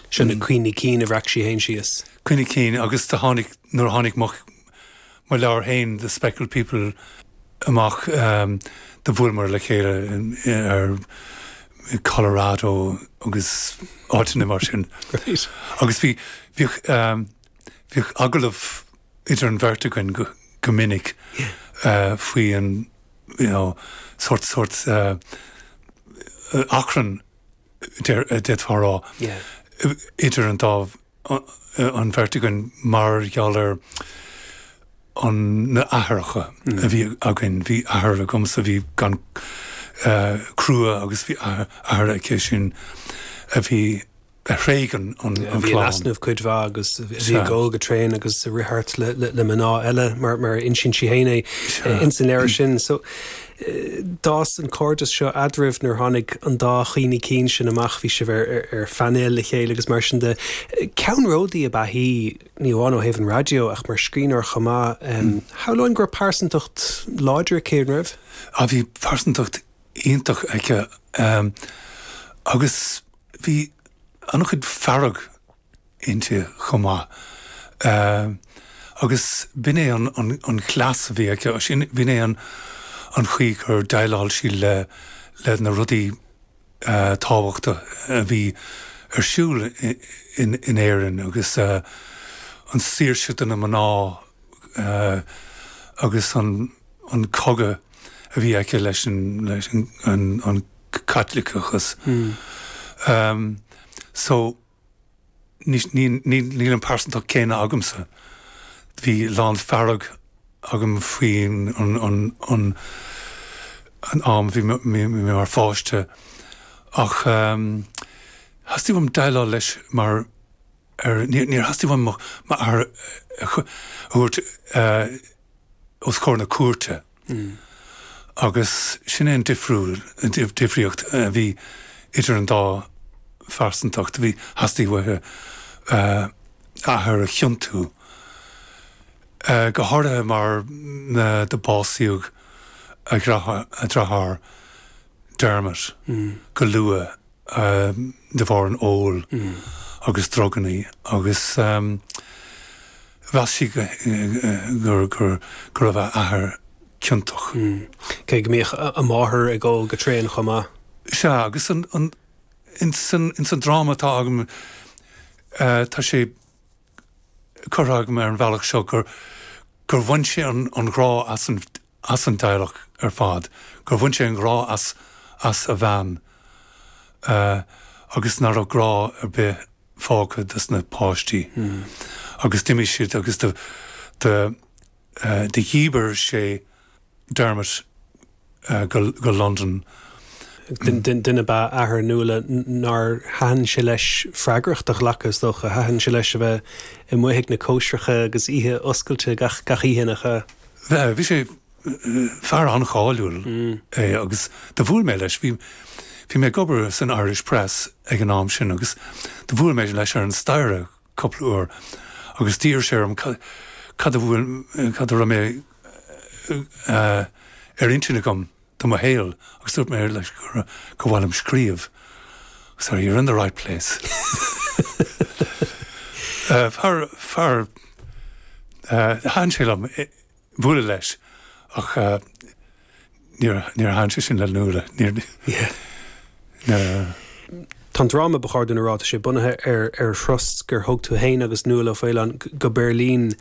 Seo na cuimhní cinn a bhreac sí féin síos. Cuimhní cinn, agus do tháinig, nuair a tháinig mo, mo leabhar féin, The Speckled People, amach, do bhuaileamar le chéile ar, i Colorado agus áiteanna mar sin. Great. Agus bhí, bhíodh, bhíodh agallamh idir an bheirt againn go, go minic faoi an, you know, sórt, sórt achrann d'fhéadfá a rá, idir an dá, an bheirt againn mar gheall ar an, na athaireacha a bhí againn, bhí athair agamsa a bhí an-chrua agus bhí athair aici sin a bhí, a thréig an clann. a bhí in easnamh cuid mhaith agus a bhí ag ól go tréan agus a rith thart le mná eile mar a insíonn sí féin é ins an leabhar sin. So. D'fhás an cairdeas seo eadraibh nuair tháinig an dá chuimhní cinn sin amach, bhí sibh ar phainéal le chéile agus mar sin de. Ceannródaí ab ea í, ní amháin ó thaobh an raidió ach mar scríbhneoir chomh maith. Shamhlóinn go raibh pearsantacht láidir aici, an raibh? Á bhí pearsantacht iontach aici agus bhí an-chuid fearg. inti chomh maith. Agus b'in é an cleas a bhí aici sin, b'in é an chaoi gur dhéileáil sí le na rudaí tábhachtacha a bhí ar siúl in Éirinn agus an saoirse do na mná agus an cogadh a bhí aici leis an Caitliceachas. Níl an pearsantacht céanna agamsa. Bhí a lán fearg agam faoi an am a bhí mé mar pháiste ach theastaigh uaim déileáil leis mar fhear. Níor theastaigh uaim m'athair a thabhairt os comhair na cúirte agus sin é an difríocht a bhí idir an dá phearsantacht. Theastaigh uaithi a hathair a chiontú, go háirithe mar do básaíodh a dreatháir, Dermot, go luath. de bharr an óil agus drugannaí agus mheas sí go raibh a hathair ciontach. Cé go mbíodh a máthair ag ól go tréan chomh maith. Sea, agus ins an dráma atá agam, tá sé. curtha agam ar an bhealach seo gur bhain sé an grá as an teaghlach ar fad, gur bhain sé an grá as a bhean agus nach raibh grá ar bith fágtha dos na páistí agus d'imigh siad agus do Do dhíbir sé Dermot go Londain. Duine ab ea athair Nuala nár thaitin sé leis freagracht a ghlacadh, is dócha. Thaitin sé leis a bheith amuigh ag na cóisreacha agus oíche oscailte gach oíche nach ea. Bhí sé, fear an-cháiliúil é agus do bhuail mé leis, bhí mé ag obair san Irish Press ag an am sin agus do bhuail mé leis ar an staighre cupla uair agus d'iarr sé orm cad a bhfuil, cad a raibh ar intinn agam do mo shaol agus dúirt mé leis gur mhaith liom scríobh. So you're in the right place. Fear, fear, thaitin sé liom. Bualadh leis ach níor thaitin sé sin le Nuala. Tá an dráma ba chóir dúinn a rá, tá sé bunaithe ar ar thuras gur thug tú fhéin agus Nuala O'Faolain go Beirlín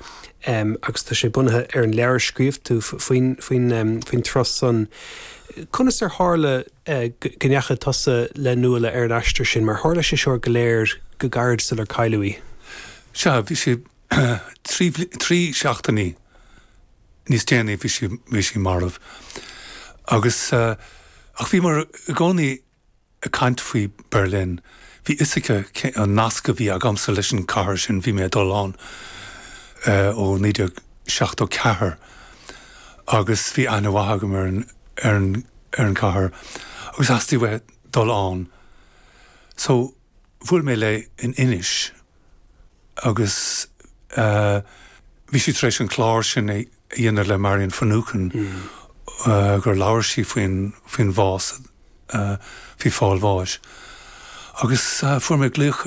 agus tá sé bunaithe ar an leabhar a scríobh tú faoin faoin faoin turas san. Conas ar tharla go ndeachaigh tusa le Nuala ar an aistear sin mar tharla sé seo go léir go gairid sular cailleadh í? Sea, bhí sé Trí seachtainí níos déanaí bhí sí, bhí sí marbh. Agus, ach bhíomar i gcónaí ag caint faoi Berlin. Bhí 'fhios aici cé, an nasc a bhí agamsa leis an chathair sin, bhí mé ag dul ann ó naoi déag seachtó ceathair agus bhí aithne mhaith agam ar an, ar an, ar an chathair agus theastaigh uaithi dul ann. So. Bhuail mé léi in Inis agus bhí sí tar éis an clár sin a dhéanamh le Marian Finucane gur labhair sí faoin bhás, faoi fáil bháis agus fuair mé glaoch